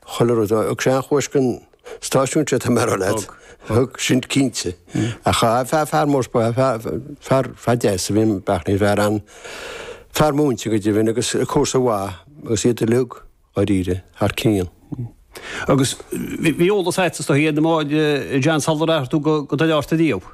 chuile rud. Thug sé an-chuairt gon stáisiún seo, tá mé a rá leat. Thug, sin cinnte. Ach a fear, fear mór breá, fear, fear deas a bhí in Beartlaí, fear an, fear múinte go deimhin agus comharsa mhaith agus iad uilig, dháiríre, thar cionn. Agus bhí eolas a'tsa, tá a fhios a'm, John sular athraigh tú go, go Doire Fhatharta ariamh.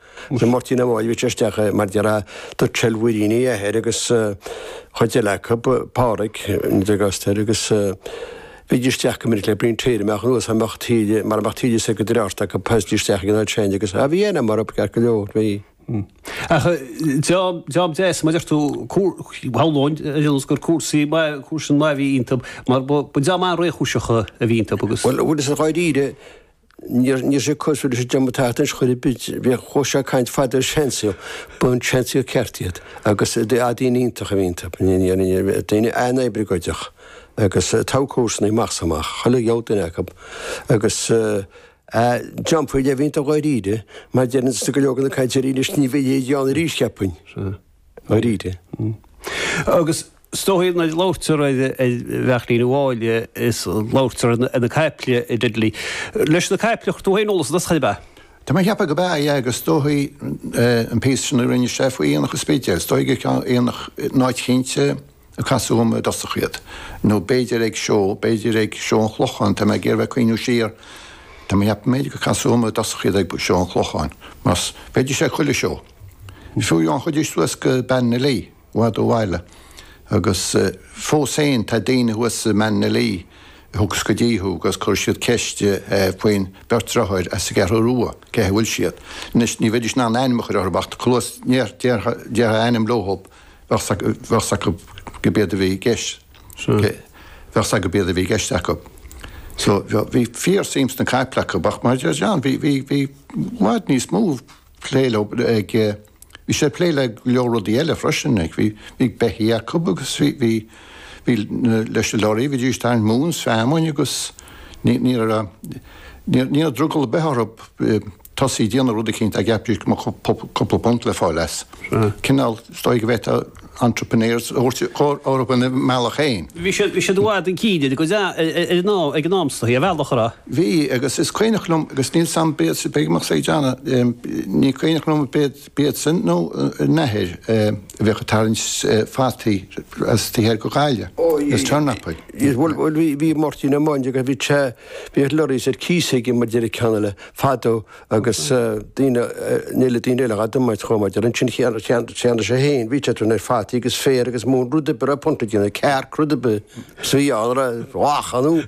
Chuir Máirtín Ó Maoilmhichíl isteach é mar deir a d'fhocal mhuirín a athair agus chuid eile acu, Pádraig, Nic Ostair, agus bhídís isteach go minic le bliain tíre amach anuas mar bheadh taoille mar bheadh taoille sa go dtí ort acu post isteach ag an oiread sin agus a bhí ann mar ab ceart go leor. Bhí. Ach job deas mar a deir tú féin agus gur cuasaí chusin a bhí iontub mar ba daoine réchúiseacha a bhí iontub agus. Bhuel bhuel is dáiríre Ní raibh sé ag cur suas leis an diomaí tachtainis chor ar bith. Bhíodh chomh sé ag caint fada ar seansaol. Ba seansaol ceart iad agus a daoine iontach a bhí iontu. Daoine an-oibleagáideach agus togha comharsanaí amach is amach. Chuile dhiabhal duine acu. Agus dream faoi leith a bhí iontu dháiríre mar deireann go leor de na cainteoirí anois ní bheidh a leithéid ann arís, cheapfainn. ndáiríre. Agus is dóigh nuair a labhairtear ar Bheartlaí amháin is labhairtear ar na caiple i dteideal leis na caiple a chuir tú féin eolas an chaill ab ea? Tá mé a cheapadh go b'ea é agus is dóigh an píosa sin a rinne sé faoi Aonach an Spidéil, is dóigh gur ag aonach in áit eicínt, a casadh orm i dtosach iad, nó b'fhéidir ag seó, b'fhéidir ag Seó an Chlocháin, tá mé ag iarraidh cuimhniú siar, tá mé cheapaim, b'fhéidir gur casadh orm i dtosach iad ag Seó an Chlocháin, mar bhídís ag chuile seó. Fiú amháin théidís suas go Ballinalee, i bhfad ó bhaile, agus fós féin tá daoine thuas i mBallinalee a thiocfas go dtí thú agus cuirfidh siad ceist faoin bheirt dhriotháir as an gCeathrú Rua, cén chaoi a bhfuil siad. Anois, ní bheidís in ann ainm a chur orthub ach tá cluas, déarfá ainm leothub. bheadh 's acu go b'iad a bhí i gceist bheadh 's acu go b'iad a bhí i gceist acu so bhí fíor suim sna caiple acu ach mar a deir John bhí bhí bhí i bhfad níos mó plé leo ag bhí sé plé le go leor rudaí eile freisin ag bhí bhí beithí acu agus bhí bhí bhí leis na lorry bhídís ag tarraingt móin is feamainn agus ní ní raibh drogall ar bith orthu tosaí ag déanamh rud eicínt, dá gceapfaidís go mbeadh cúpla punt le fáil as. Cineál, is dóigh go bhféadfá entrepreneurs a thabhairt orthu ina mbealach féin. Bhí siad, bhí siad i bhfad chun cinn air, go deá, ar an am, ag an am sa, ar bhealach ar a. Bhí, agus is cuimhneach liom, agus níl a fhios a'm, beidh, beidh, mbeadh sé ag déanamh, ní cuimhneach liom arb, b'iadsan nó a n-athair a bheadh ag tarraingt fataí as taobh thoir de Ghaillimh, is turnapaí. Is bhuel, bhuel, bhí, bhí Máirtín Ó Maindre agus bhí te, bhí ar lorries ar cíos aige mar a deir an ceann eile fadó agus daoine, ní le daoine eile, Adhmaid chomh maith, ar an tSin Cheann, Cheann, cheannaigh sé fhéin, bhí sé ag tarraingt fataí agus féar agus móin rud ar bith, a raibh punt le déanamh, cearc, rud ar bith, is bhí ann, raibh, mhaith, an,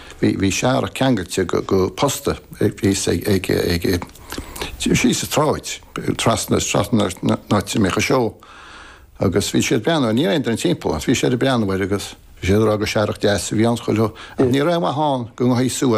Bhí bhí searrach ceangailte go go posta thíos ag ag ag síos sa tsráid trasna trasna ón áit a mbíodh an seó agus bhí sé ag breathnú air. Ní raibh aon duine timpeall ach bhí sé ag breathnú air agus bhí sé ag rá gur searrach deas a bhí ann. Chuile shórt. Ní raibh aon mhaith ann go ngabhadh suas.